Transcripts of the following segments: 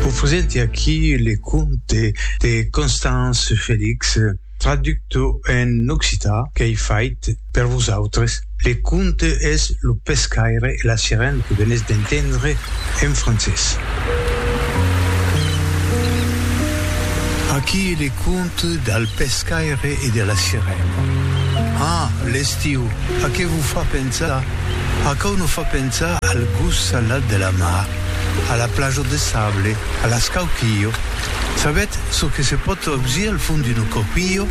Vos presenti aquí le conte de Constance Felix, traducto en occitan qu'ei fait per vosautres. Le conte es Lo pescaire e la sirena que venètz d'entendre en francés. Aquí le conte del pescaire e de la sirena. Ah, l'estiu, a qué vos fa pensar? Aquò nos fa pensar al gust salat de la mar, a la plaja de sable, a l'escauquillo. Sabètz çò que se pòt ausir al fond d'un escauquillo?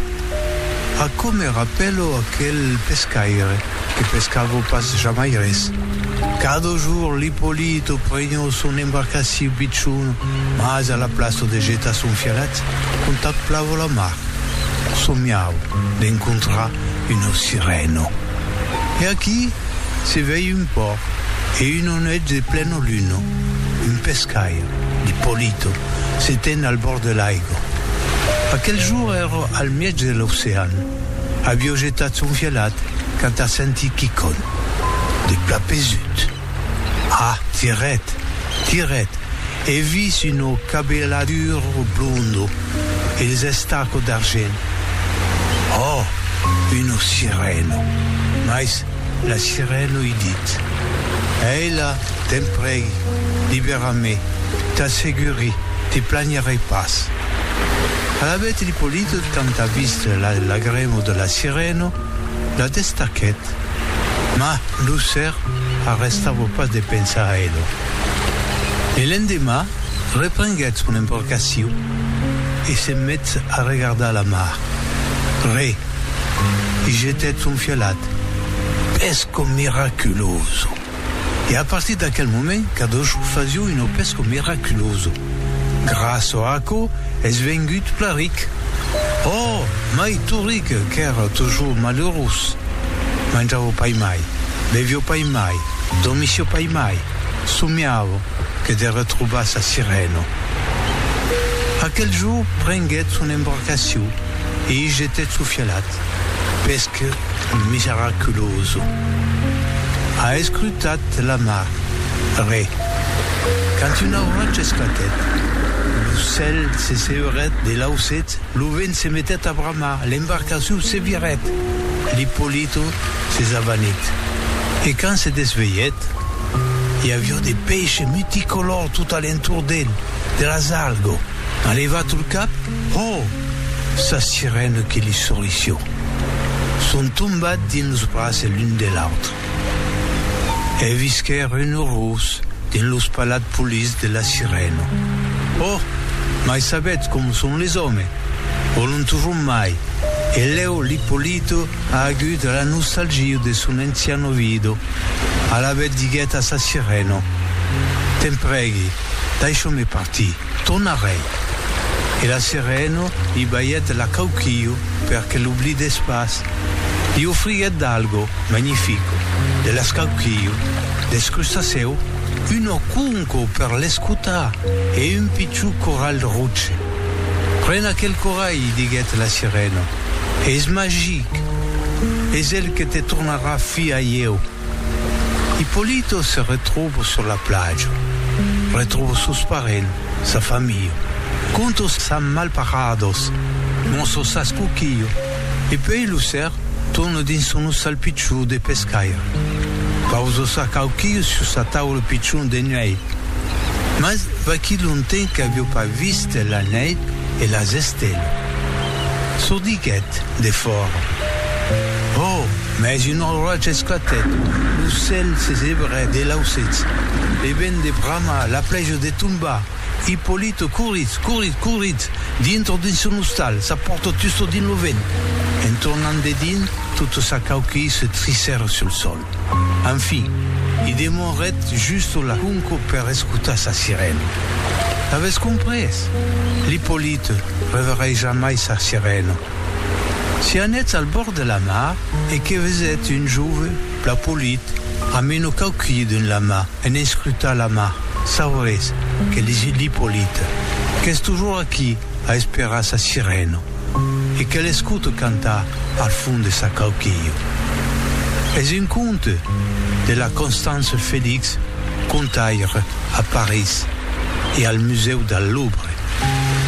Aquò me rapèlo aquel pescaire que pescava pas jamai res. Cada jorn l'Ippolito prenhó son embarcaciu pichon mas a la plaça de jetar son fialet contaplava la mar. Somiau d'encontrar una sirèna. E aquí se vei un pòrt e un onèth de plena luna, un pescaire, d'Ippolito, se ten al bòrd de l'aigua. Aquel jour èra al mièg de l'ocean, avió jetat son vielhat quand a sentit quicon de plat pesut. Ah, tiret, tiret, e vis una cabeladura blonda e des estacas d'argent. Oh, una sirena! Mas la sirena i dit, Ela, te'n prègui, libèra-me, t'asseguri, te planharai pas. Alavetz l'Ippolito, quand a vist la lagrema de la sirena, La destaquèt, mas lo ser arrestava pas de pensar a ela. E l'endemà reprenguèt son embarcacion e se met a regardar la mar. Re. I jetèt son fialat. Pesco miraculoso! e a partir d'aquel moment cada jorn fasió un opesco miraculoso. Gràça a aquò es vengut plan ric. Òh, mai tot ric qu'èra tot jorn malerós. Manjava pas mai, bevió pas mai, dormissió pas mai, somiava que de retrobar sa sirena. Aquel jorn prenguèt son embarcacion e i jetèt su fialat. estat pesc miseraculoso. A escrutat la mar, re. Quand una oracha esclatèt, lo cèl se seurèt de lausèt, lo vent se metèt a bramar, l'embarcacion se virèt, l'Ippolito se s'avanit. E quand se desvelhèt, i avió de peish multicolor tot a l'entorn d'el, de las algo. A levat lo cap, ho! sa sirena que li sorrisó. Son tombat dins los braces l'un de l'autre. E visquèr un urrós dins los palats polits de la sirena. Oh! mai sabètz com son les òmes, vòlon tujor mai, e lèu l'Ippolito a agut la nostalgia de son ancian ovido. Alavetz diguèt a sa sirena, T'en prègui, daisha'me partir. Ton arrèir. E la sereno li balhèt la cauquillo per que l'oblidèss pas. Li ofriguèt d'algo magnifico, de l'escauquillo, deth crustacèu, un oconco per l'escotar e un pichon coralh roche. Pren aquel coralh, diguèt la sereno, es magic! Es el que te tornarà filha ieu. Ippolito se retròvo sur la plaja, retròvo sos parents, sa familha, conto sas malparados, mostro sas coquilho e pei lo ser torno dins son ostal pichon de pescaire. Pauso sa cauquilho sur sa taula pichon de nuèit. Mas va quí lonten qu'avió pas vist la nèit e las estelas. Sordiguèt de fòra. Ò! Mès un oratge esclatèt, lo cèl se sebrèt de lausèths, le vent de brama, la plèja de tombar. Ippolito corrit, corrit, corrit dintre dins son ostal, sa pòrta tusta dins lo vent. En tornant de dins, tota sa cauquilh se trissèra sul sòl. Enfin, i demorèt justo la conca per escotar sa sirena. L'avètz comprés? L'Ippolite reverrai jamai sa sirena. Si anètz al bòrd de la mar e que vesètz un jove plan polit amb un ocaukilh dins la man en escrutar la mar, sauretz que les il Ipolit qu'es tojor aquí a esperar sa sirena e que l'escote cantar al fond de sa cauquilha. Es un conte de la Constance Félix, contaire a París e al Musèu del Louvre.